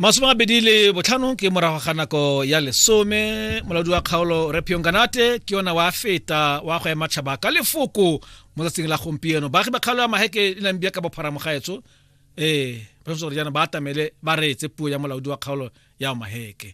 masome a bedi le botlhano ke morago ga nako ya lesome molaodi wa kgaolo repion kanate ke yona wa feta wa go ema tšhaba ka lefoko mo tsatsing la gompieno baagi ba kgaolo ya maheke e nang bia ka bopharamogaetso ee ba gore jaana ba atamele ba reetse puo ya molaodi wa kgaolo ya maheke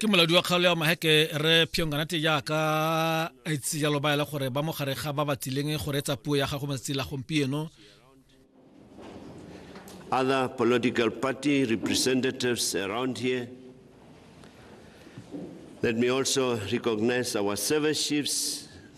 ke moladi wa kgaolo ya maheke re phionganate jaaka a itse jalo ba ele gore ba mogare ga ba batsileng go reetsa puo ya gago matsatsi la gompieno other political party representatives around here let me also recognize our service chiefs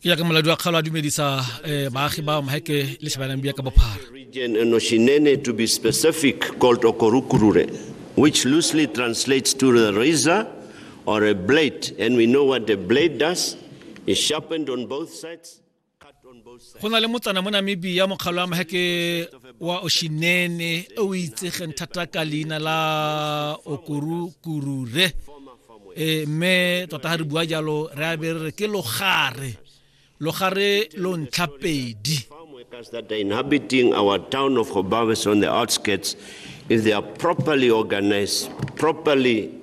ke jaaka moladi wa kgalo a dumedisa um baagi ba maheke le shebanang bia ka bophara noshinene to be specific called okorukurure which loosely translates to the razor or a blade and we know what the blade does is sharpened on both sides go na le motsana mo namibia mokgalo wa maheke wa oshinene o itsegeng thata ka leina la okorukurure e mme tota ga re bua jalo re a be re re ke logare logare lo ntlha pedi that are inhabiting our town of Hobabes on the outskirts, if they are properly organized, properly